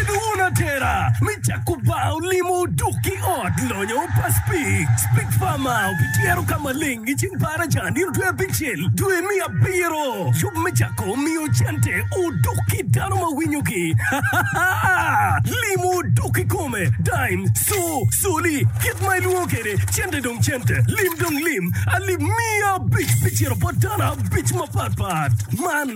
Bedo wun atera me cako bar olimo dok ki ot lonyo pa Spix. Spix Bar ma obityero ka maleng i ceng Paraca nino dwe abicel dwe me abiro. Yub me cako miyo cente odok ki dano ma winyo ki. Limo odok ki kome. Dime, co, coli, kit ma ilwongo kede cente dong cente. Lim dong lim. Alip miya abic bicito bot dano abic mapat pat. Man.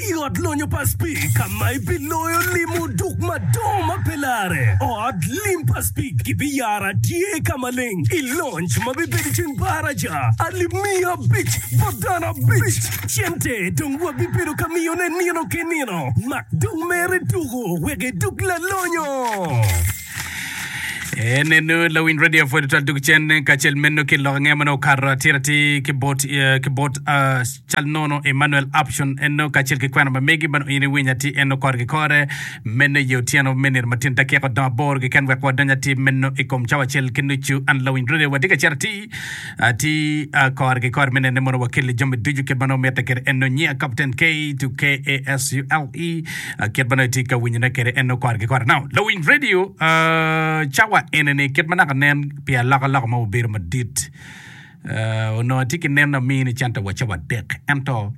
I ot lonyo pa Speke ka ma ibiloyo lim oduk madongo ma pe larre, ot lim pa Speke gibiyaro atye ka maleng i lonc ma bibedo i ceng baraja alip miya abic bot dano abic. Cente dong wabibedo ka miyone nino ki nino, mak dong mere tuku wek edug lalonyo. En eno lawiny radio pwod twal dog cen kacel meno ki lok ange ma nongo okato atiratir ki bot ki bot Cal nono, Emmanuel Aption Eno kacel ki kwena ma megi bene oyenyo winy atir eno korgi kore. Meno iye otyeno me nino matino dakika odong aboro keken wek wadony atir meno i kom cawa acel ki nucu. An Lawiny Rudi watye ka cito atir atir kore ki kore me nene mono wakelli jami ducu kit ma nongo mitte kwede eno. Nyinga Kapten Kate, K-A-S-U-L-E, kit ma nongo itye ka winyona kwede eno kore ki kore. Now, Lawiny Radio, cawa enini kit ma naka nen pi alokaloka ma obedo madit, Onongo atye ki neno amin i center wa cawa adek ento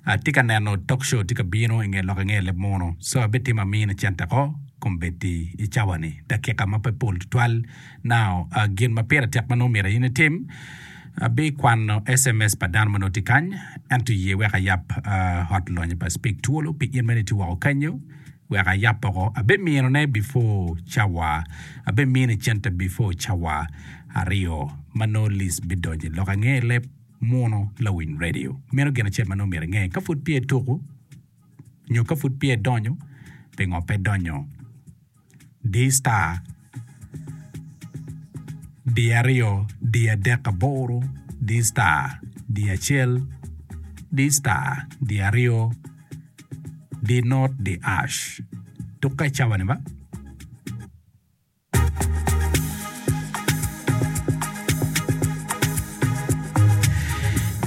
atye ka neno talk show tye ka bino i nge lok i nge leb mono so abitimo amin i center ko kom bedi i cawa ni dakika ma pe pol tutwal now gin ma pire tek ma nongo myero in itim abikwano sms pa dano ma nongo tye kany ento ye wek ayab hotline pa speak twolo pi in mene itye woko kenyo wek ayab oko abiminone before cawa abimino i center before cawa aryo ma nongo Liz bidonyo i lok ange i leb muno lawiny redio. Meno gin acel ma nongo myero inge, ka pud pye tuku nyo ka pud pye donyo, pingo pe donyo? Di star di aryo di adek aboro di star di acel di star di aryo di not di ash. Tuk ka icawa ni ba.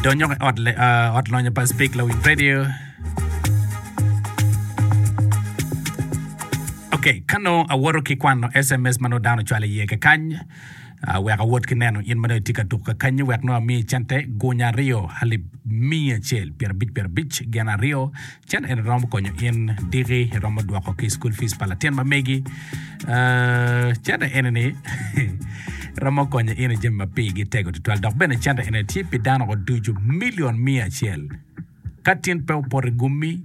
Donyo i ot, le, uh, ot lonyo pa Speak Low Youth Radio. Okay, ka nongo awoto ki kwano SMS ma nongo dano ocwalo iye kakany, uh, wek awot ki neno in ma nongo itye ka tuk kakanyi wek nongo amiyi cente gunya aryo alip miya acel pyerabic pyerabic gin aryo Cen eni romo konyo in diki iromo dwoko ki school fees pa latin ma megi. Uh, cente eni ni romo konyo in i jami ma pigi tego tutwal dok bene cente eni tye pi dano oducu milion miya acel. Ka tin pe opoto i gummi,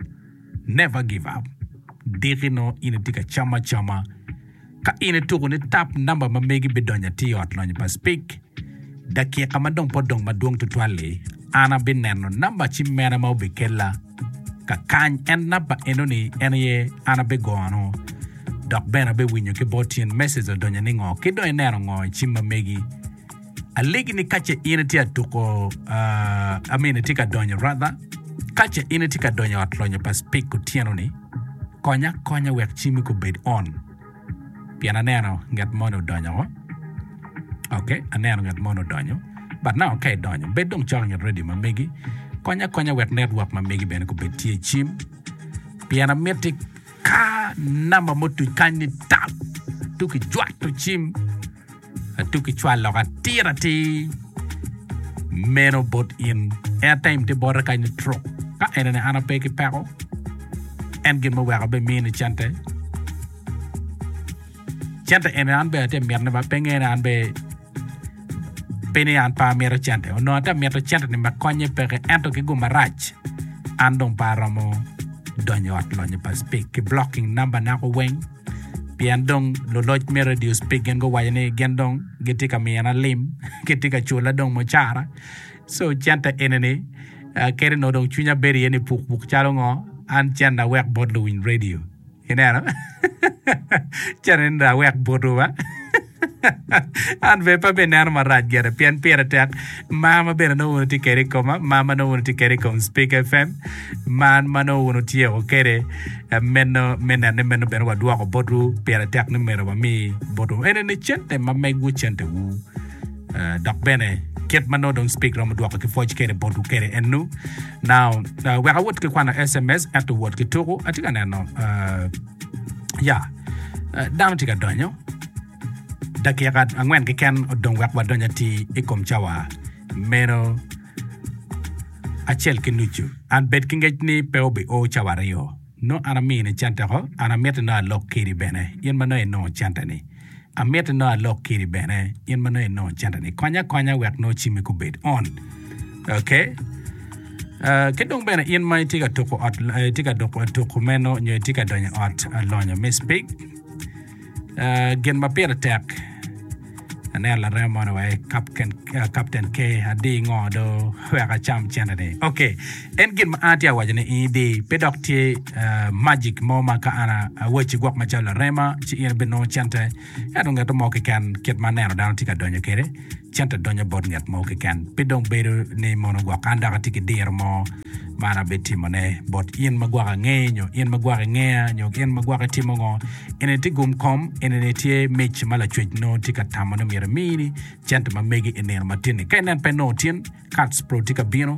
never give up. Diki no in itye ka cam acama Ka in ituko ni tap namba ma megi bidonyo atir i Ot Lonyo pa Speke, dakika ma dong pe odong madwong tutwal-li, an abineno namba cimmena ma obikella ka kany. En namba eno-ni en aye an abigono dok bene abewinyo ki bot tyen message odonyo ni ngo ki dong ineno ngo i cimma megi. Alegi ni ka ce in itye ka tuko, uh, I mean, itye ka donyo rather, ka ce in itye ka donyo ot lonyo pa Speke otyeno-ni, konya akonya wek cimi gubed on. Pien aneno nget moni odonyo woko. Okay, aneno nget moni odonyo. But now ka idonyo, bed dong cok inget radio ma megi. Konya akonya wek network ma megi bene gubed tye i cim. Pien amiti ka namba mutuc kany ni tap, tuki jwato cim, Atuk ki cwal lok atir atir meno bot in. Airtime tye bote kany ni truk. Ka enene an ape ki peko. En gin ma weko be mini cente. Cente eni an be atye mito ni ba penge ni an be pe ni an pe amito cente. Onongo atye mito cente ni me konye peke ento ki guma rac an dong pe aromo donyo ot lonyo pa speak ki blocking number nako weng. pien dong luloc me redio Spigen guwaco ni gin dong gitye ka miyona lim, gitye ka cula dong mucara. So cente enini ah, kadi nongo dong cwinya bedo iye ni pukpuk calo ngo, an cen na wek bot luwiny redio. Ineno? cen eni na wek botwu ba. An bene pe abineno marac gire pien pire tek. Mar ma bene nongo wun wutye kwede i koma, mar ma nongo wun wutye kwede i kom Spik FM, mar ma nongo wun wutyeko kwede, eh, meno me neno ni meno bene wadwoko botwu. Pire tek ni myero wami botwu ene ni cente ma megwu, centewu. Eh, dok bene kit ma nongo dong Spik romo dwoko ki pwoc kwede botwu kwede ennu. Now, eh, wek awot ki kwano sms ento wot ki tuku. Atye ka neno, eh, Ya, dano tye ka donyo. Dakika angwen keken odong wek wadony atir i kom cawa meno acel ki nucu. An bed ki ngec ni pe obio cawa aryo. Nongo an amini cente-ko, an amitti nongo alok kedi bene, in ma nongo inongo centeni. Amiti nongo alok kiri bene in ma nongo inongo cente ni konya akonya wek nongo cimi kubed on. Okay? Uh, ki dong bene in ma itye ka tuko ot eh, itye ka duko tuko meno nyo itye ka donyo ot eh, lonyo me speak uh, gin ma pire tek aneno larem mono wa eh, Captain- eh, Captain K adi ngo do wek acam cente ni. Okay. En gin ma an atye ka waco ni in idi, pe dok tye magic mo ma ka an awacci gwok macalo larema ci in ibinongo cente, ento ngete mo keken kit ma aneno dano tye ka donyo kwede, cente donyo bot nget mo keken. Pe dong bedo ni mono gwok an dok atye ki diro mo ma an abitimone bot in ma gwok angeyi nyo in ma gwok ingeya nyo in ma gwok itimo ngo. Eni tye gum kom, eni tye mic ma Lacwec nongo tye ka tamo ni myero emini, cente ma megi i nino matinni. Ka inen pe inongo tin, Kats pro tye ka bino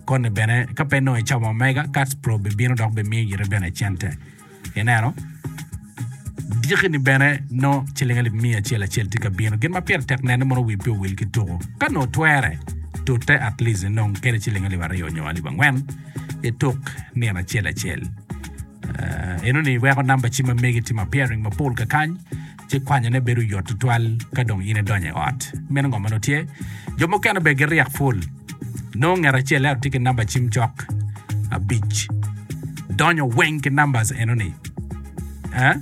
koni bene ka pe nongo icomo omega kats pro bibino dok bimiyo ite bene cente ineno diki ni bene nongo ciling alip miya acel acel tye ka bino gin ma pire tek nene mono wi pe owil ki tuko ka nongo twere tute at least inong kede ciling alip aryo nyo alip angwen ituk nino acel acel enoni iweko namba ci ma megi timo appearing mapol kakany ci kwanyone bedo yot tutwal ka dong in idonyo i ot. Meno ngo ma nongo tye? Jo mukene bene giryek pul. Nongo ngat acel ento tye ki namba cim cok abic. Donyo weng ki numbers enoni. Eh?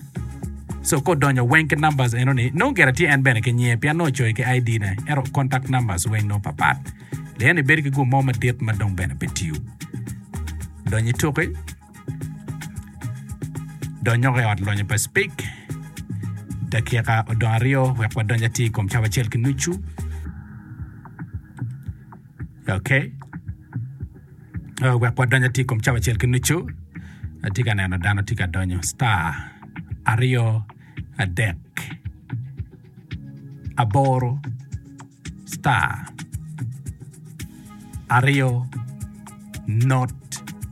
So ka odonyo weng ki numbers enoni, nongo gire tye en bene ki nyinge pien nongo ocoyo ki ID-ne, ento contact numbers weng nongo papat. Liyeni bedo ki gum mo madit ma dong bene pe tiyo. Donyo ituki, Donyoko i ot lonyo pa Speke dakika odong aryo wek wadonj atir i kom cawa acel ki nucu. Ok. Oh, wek wadonj atir i kom cawa acel ki nucu. Atye ka neno dano tye ka donyo. Star aryo adek. aboro star aryo not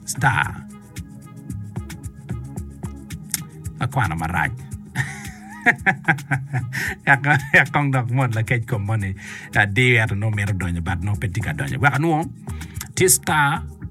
star akwano marac yak kong dok mot lakec kom moni adiyo ento nongo mito donyo but nongo pe tye ka donyo wek anwo tye star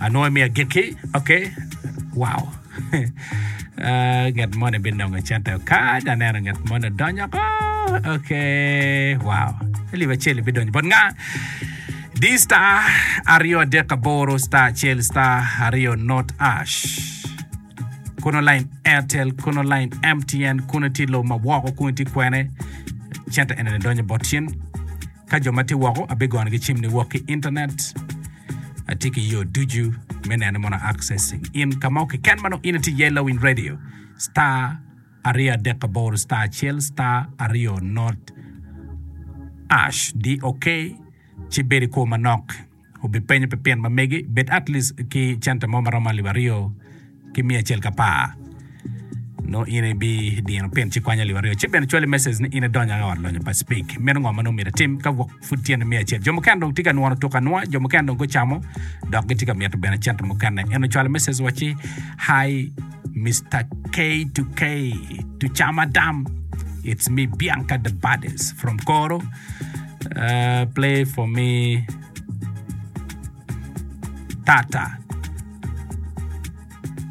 Anongo imiyo agikki ok wow nget moni binongo cente oka dok aneno nget moni odonyo oko ok wow alip acel bidonyo bot nga di star aryo adek aboro star acel star aryo not ash kono line Airtel kono line MTN kono tye lobo ma woko kono tye kwene cente ene donyo bot in ka jo ma tye woko abigoyogi cim niwok ki internet Atye ki yo ducu me neno mono accessing in ka mo keken ma nongo in ati iye lawiny radio star aryo adek aboro star acel star aryo not ash di ok ci bed i kwo manok obipenyo pi pin ma megi bed atleast ki centa mo ma romo alip aryo ki miya acel ka par, nongo in ibidino pin ci kwanya lib aryo. Ci bene cwali message ni in idonyo anga ot lonyo pa Speke. Meno ngo ma nongo myero atim ka wok pud tye ni miya acel? Jo mukene dong tye ka nwono tuk anwoa, jo mukene dong gucamo dok gitye ka mito bene cente mukene. En ocwalo message wacci, Hi Mister K2K to Chama Dam, it's me Bianca the Baddest from Koro. Uh, play for me Tata.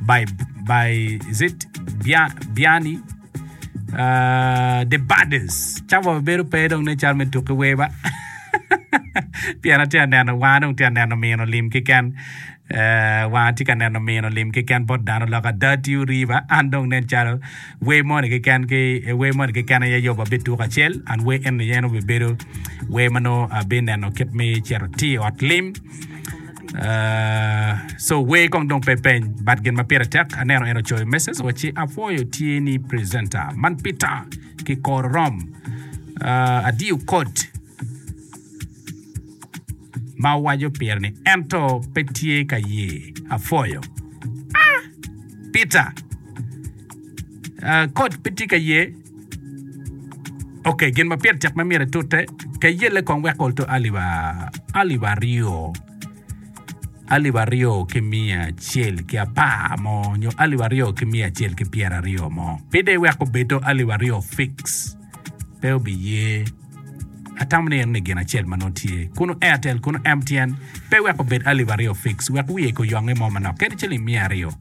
By, by is it Bia, Biani? Uh, the Budders. Ca wa bedo pe dong ne cal me tuki weba. Pien atye ka neno wanga dong tye ka neno mino lim kiken. Uh, wanga tye ka neno mino lim kiken bot dano lok ada tio riba an dong nen calo Wer moni keken ki e wer moni keken aye Yoba bituko acel and wer eni aye nongo bibedo wer ma nongo abineno kit me cito atir i ot lim. Uh, so wer kong dong pe peny but gin ma pire tek aneno en ocoyo message wa ci apwoyo tye ni presenter man Peter ki kor rom uh, adiyo kot ma waco pire ni ento pe tye ka ye apwoyo ah Peter Ah, kot pe tye ka ye. Okey, gin ma pire tek ma myero itute, ka iyelle kong wek ol to alip ah, alip aryo, alip aryo ki miya acel ki apar mo, nyo alip aryo ki miya acel ki pyeraryo mo. Pi de iwek obed to alip aryo fix, pe obiye. Atamo ni eno ni gin acel ma nongo tye kunu Airtel kunu MTN, pe iwek obed alip aryo fix, wek wiye ko yonge mo manok, kadi ciling miya aryo.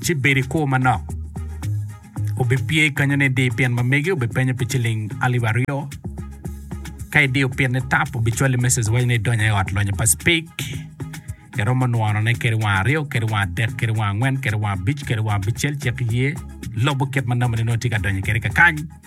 ci bedo i kwo manok. Obipye i kanyone idi pin ma megi obipenyo pi ciling alip aryo. Ka idiyo pinne tap obicwali mecej waco ni idonyo i ot lonyo pa cipik. Iromo nwonone kede wang aryo, kede wang adek, kede wang angwen, kede wang abic, kede wang abicel cik iye. Lobo kit ma nambane nongo itye ka donyo kede kakany.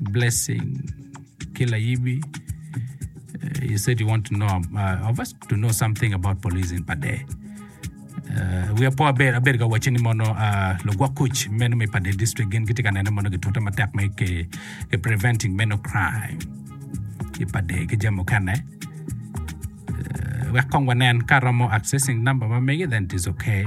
blessing ki layibi you said you want to know uh, of us to know something about police in Pade. Uh, we are poor bed abed ka wacho ni mono uh, lugwok kuc meno me Pade district gin gitye ka neno mono gitute matek me ke, ke preventing meno crime i Pade ki jami mukene. Uh, wek kong wanen ka romo accessing number ma megi then it is okay.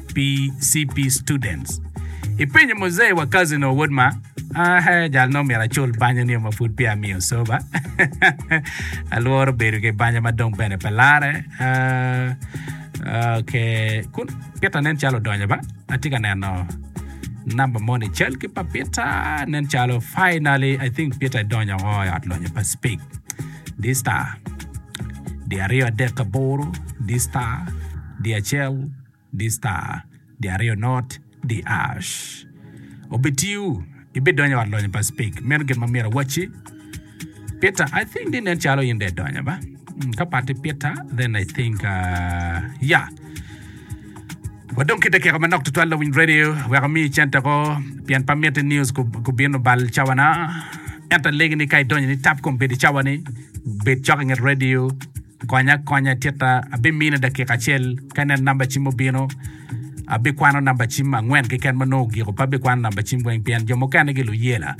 pi CP students. Ipenyo Muzee wa Kazino wod ma ah, jal nongo myero acul banyo nio ma pud peya amiyo soba. Alworo bedo ki banyo ma dong bene pe lare. Ah, ok, kun pita nen calo odonyo ba. Atye ka neno namba mo ni cal ki pa pita nen calo finally I think pita idonyo o i ot lonyo pa speak. This star. Di aryo adek aboro. This star. Di acel. di star di aryo not di ash obitiyu ibidonyo i ot lonyo pa speak meno gin ma myero awacci Peter I think ni nen calo in dong idonyo ba Mm, ka pati Peter then I think uh, yeah wadong kite keko manok tutwal lawiny radio wek omi cente ko pien pa mitte news ku- kubino bal cawana ento alegi ni ka idonyo ni tap kom bedi cawani bed cok inget radio Konya akonya tika abimine dakika acel ka ineno namba cim obino abikwano namba cim angwen keken ma nongo ogiko pe abikwano namba cim weng pien jo mukene gi luyela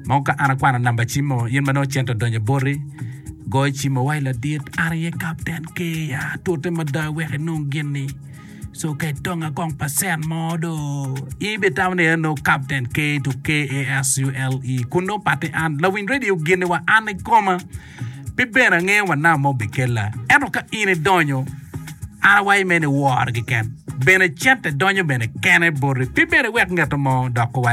ma ka an akwano namba cim o in ma nongo cente odonyo i boti goyo cim o wai ladit an aye kapten keya tute mada wek inong gin-ni so ka itonga kong pa cent mo do in ibitamo ni en nongo kapten keya to KASULE kun nongo pati an lawiny redio gini wa an ikoma Pe bene angeyo wa nam ma obikella. Ento ka in idonyo, an awaco me ni woro keken. Bene cente donyo bene kene boti. Pe bene iwek ngeto mo doko wa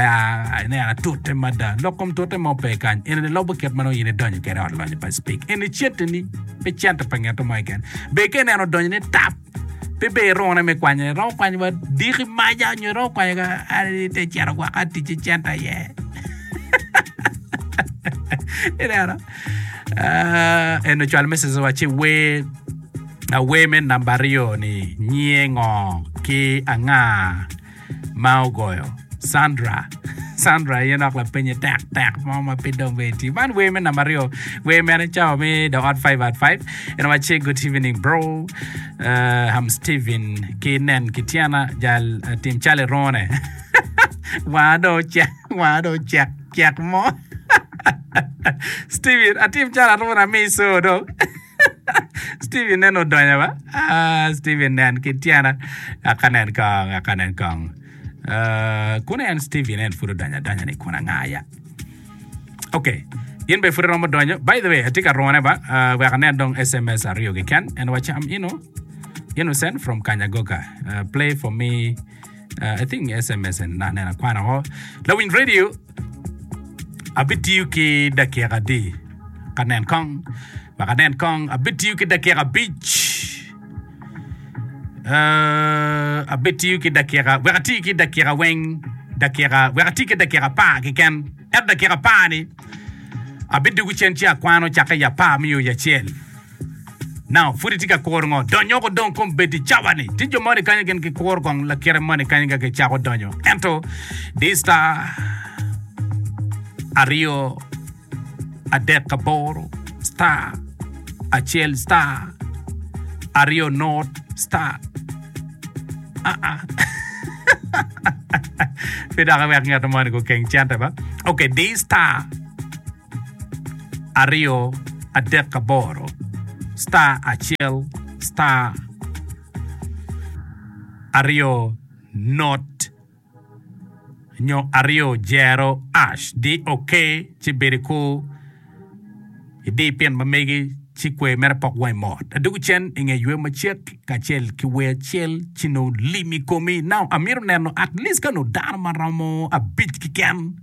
ineno atute mada. Lok kom tute mo pe kany. Enini lobo kit ma nongo in idonyo kede ot lonyo pa Speke. Eni ceteni, pe cente pa ngeto mo keken. Ber ka ineno odonyone tap. Pe ber irone me kwanyone. Iromo kwanyo wa diki maja nyo iromo kwanyo ka te cito gwaka tic i centa iye. Ineno? Ah, en ocwal mesej wa ci wer awer me namba aryo ni nyiye ngo ki anga ma ogoyo Sandra Sandra aye nok lapenye tek tek mo ma pe dong be iti man wer me namba aryo wer mene cawa me the odd five at five en wa che good evening bro uh, I'm Steven ki nen ki tyena jal uh, tim cali rone wanga do cek wanga do cek cek mo Steven atim calo aruna mi so dong Steve nen odonyo ba. Ah, Steve nen ki tyena. Ngaka nen kong, ngaka nen kong. Ah, kun en Steve nen pud odonyo adonya ni kun anga ya. Okay. In be pud iromo donyo. By the way, atye ka rone ba. Uh, wek anen dong SMS aryo keken. En wacham ino. Innocent from Kanyagoka. Uh, play for me. uh, I think SMS and na nena kwana ho. Lawin radio abitiyo ki dakika di ka nen kong ma ka nen kong abitiyo ki dakika abic uh, abitiyo ki dakika wek ati ki dakika weng dakika wek ati ki dakika par keken ento dakika par ni abidugu cen ci akwano cakke ya par miyo ya cel Now, pud itye ka kuro ngo? Donyo oko dong kom bedi cawa ni. Tye jo moni kany gin gikuro kong lakite moni kany ka gicako donyo. Ento di star aryo adek aboro star acel star aryo not star ah ah pi dok iwek ngeto moni gukeng cente ba. Okay, di star aryo adek aboro star acel star aryo not nyo aryo jero ash di ok ci bedo i kur idi pin ma megi ci kwer mere pok wangi mot adwogo cen i nge ywe macek kacel ki wer acel ci nongo lim i komi now amito neno atleast ka nongo dano maromo abic keken.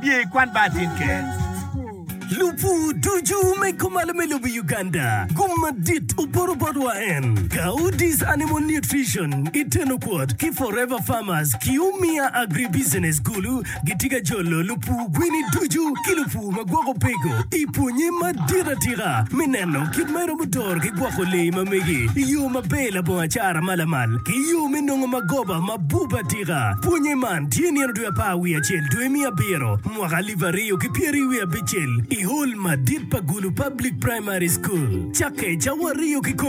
Biye i kwan bar tin ker. Lupur ducu me kumalo me lobo Uganda gum madit oporo bot wa en, Gaudis Animal Nutrition, Itenoquart ki Forever Farmers ki Umia Agribusiness Gulu gitye ka jolo lupur gwini ducu ki lupur ma gwoko peko i pwonye madit atika me neno kit ma iromo doro ki gwoko lee ma megi i yo maber labongo acara ma lamal ki yo me nongo magoba mabup atika. Pwonye man tye nino dwe apar wiye acel, dwe me abiro, mwaka alip aryo ki pyeri wiye abicel, i hol madit pa Gulu Public Primary School. Cakke cawa aryo kikome.